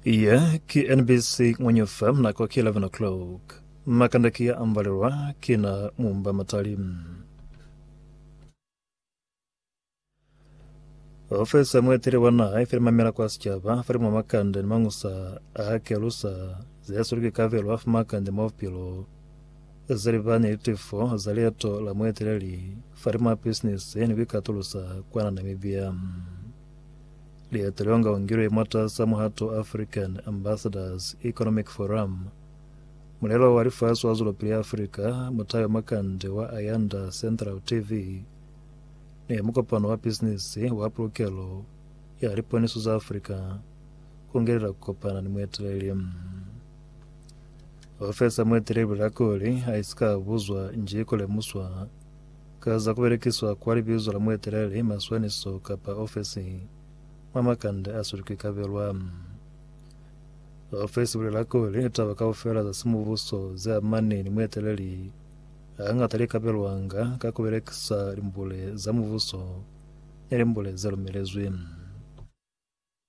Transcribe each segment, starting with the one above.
Iye ki NBC Ng'onyofa nako ki 11 o'clock. Makanda ki ya ambalelwa ki na mumba matali. Ofisi ya mueteli wa naha ife mamela kwa sicaba fa mwa makanda ni mangusa a kelusa ze sulu ki kabelo afu makanda mwa bupilo ze libani ni tifo za lieto la mueteleli fa mwa business ni ku ikatulusa kwa na Namibia. Lieto leo nga ungilwe mwatas'a muhato African Ambassadors Economic Forum. Mulelo wa lifasi wa zwelopili ya Afrika, Mutayo Makande wa Ayanda Central TV, ne mukopano wa bisinisi wa pulukelo ya liponiso za Afrika, ku ngelela ku kopana ni mueteleli. Ofesi ya mueteleli Bilakoli ha isika buzwa nji ku lemuswa Ka za ku belekiswa kwa libizo la mueteleli mwa swanisiso kapa ofesi mwa makande a si lukwi ka belwa, ofesi i bulela kuli litaba kaufela za simubuso ze amani ni mueteleli hangata li ka belwanga ka ku belekisa limbule za mubuso ni limbule ze lumelezwi.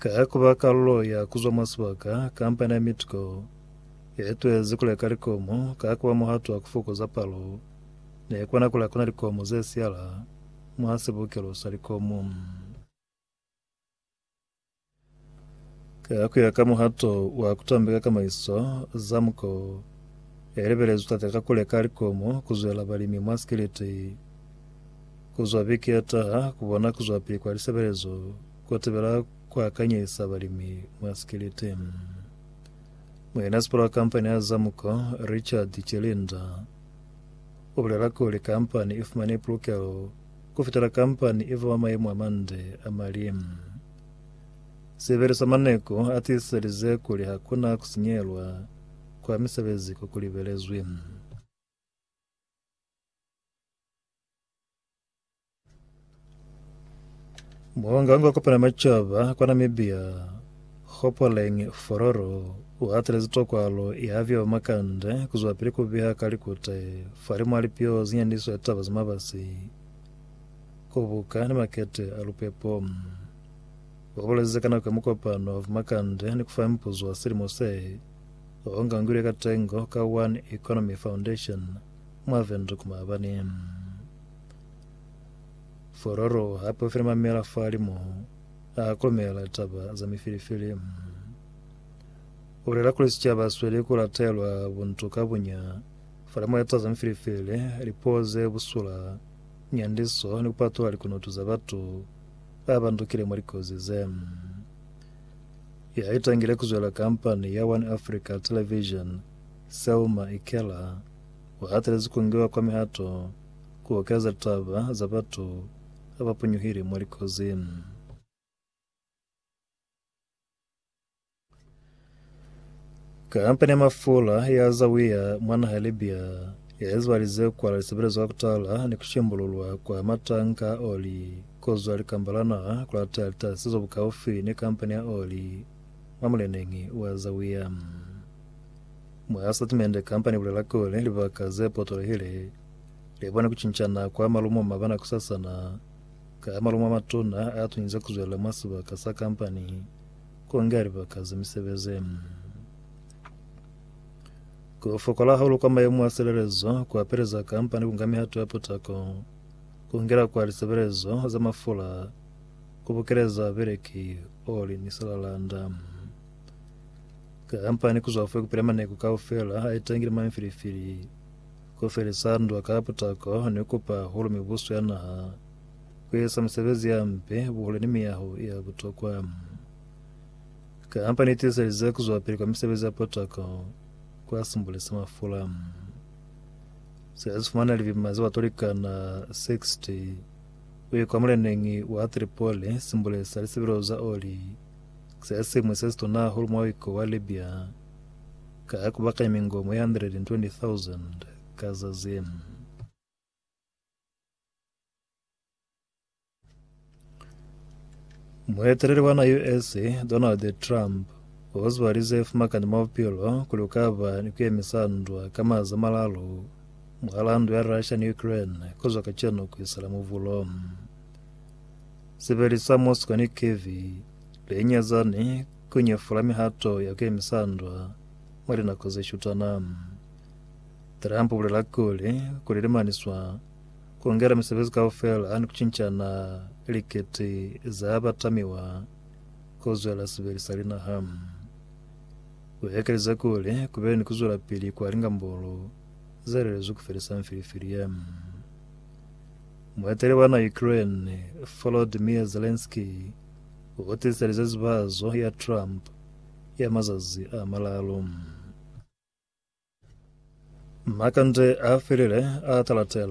Ka ku ba kalulo ya ku zwa mwa sibaka, kampani ya Midco ye ituezi ku leka likomo ka ku ba muhato wa ku fokoza palo ne ikona ku lakona likomo ze siyala mwa sibukelo sa likomo. Ka ku ya ka muhato wa ku tambeka kamaiso, Zamco i lebelezwi tatakakule ka likomo ku zwela balimi mwa sikiliti. Ku zwa biki ye taha, ku bona ku zwa pili kwa lisebelezo ku tebela ku akanyisa balimi mwa sikiliti. Muinasipala wa kampani ya Zamuco, Richard Chilinda, u bulela kuli kampani i fumane pulukelo ku fitela kampani i ba mwa mayemo a mande a mali. Sibili sa Maneko a tiiselize kuli ha ku na ku sinyelwa kwa misebezi ko ku libelezwi. Muhangangwe wa kopana macaba kwa Namibia Hopoleng Fororo uhatilezi tokwalo ya vyo makande kuzwa pili kubiha ka likute falimu alipio zinyandiso ya taba zamabasi kubuka ni makete a lupepo wabulezi kana kwa mukopano wa makande ni kufa mpuzo wa silimo se o ngangilwe ka tengo ka One Economy Foundation mwa Windhoek maabani. Fororo hape ufile mamela falimo a kolomela taba za mifilifili. Ulela kuli sicaba sweli kulatelwa buntu ka bunya falimo ya taza mifilifili, lipuo ze busula, nyandiso ni kupatula likunutu za batu abandukile mwa likozi ze. Ya itangile kuzwela kampani ya One Africa Television, Selma Ikela, u hatelezi kungiwa kwa mihato ku okeza taba za batu ba ba punyuhile mwa likozi. Kampani ya mafula ya Zawiya mwa naha ya Libya ya ezibalize kwala lisebelezo ka kutala ni kushimbululwa kwa matanka a oli kozwa likamba la naha kulateya litasizo bukaufi ni kampani ya oli mwa muleneñi wa Zawiya. Mwa statimende, kampani ibulela kuli libaka ze potolehile libone kucincana kwa malumo mabana kusasana ka malumo a matuna a tunyize kuzwela mwa sibaka sa kampani. Ku nge libaka za misebezi ye Ku fokola hahulu kwa mayemo a silelezo, ku apeleza kampani ku nga mihato ya potako, ku ngela kwa lisebelezo za mafula, ku bukeleza babeleki oli ni silalanda. Kampani ku zwa fe ku pila maneku kaufela a itangile mwa mifilifili, ku felisa ndwa ka potako ni ku pa hahulu mibuso ya naha. kueza misebezi ya mpe, buhule ni miyaho ya butokwa. Kampani itiiselize kuzuapili kwa misebezi ya potako kwa simbuli sa mafula. Sila sifumana libima za batu likana 60 uye kwa muleneñi wa Tripoli simbuli sa lisebelo za oli se simwi se situna hahulu mwa wiko wa Libya ka kubakanya mingomo ya 120,000 ka zazi. Mueteleli wa na US Donald Trump o zwalize fumakani mwa bupilo kuli ukaba ni kuyemisa ndwa ka maza malalu mwahala ndwa ya Russia ni Ukraine kuzwa kacenu kuisela muvulo. Sibeli sa Moscow ni Kiev lenyezani kunyefula mihato ya kuyemisa ndwa mwa linako zeshutana. Trump ubulela kuli, kuli limaniswa kulungela misebezi kaufela ni kucincana likiti za batamiwa kuzwela sibeli sa linaha. Uekelize kuli, Kubeni ni kuzwelapili kwa lingambulu zelelezwi kufelisa mfilifili ye. Mueteli wa na Ukraine, Volodymyr Zelensky, utiselize zibazo ya Trump ya mazazi amalalu. Makande a felile a Talatel.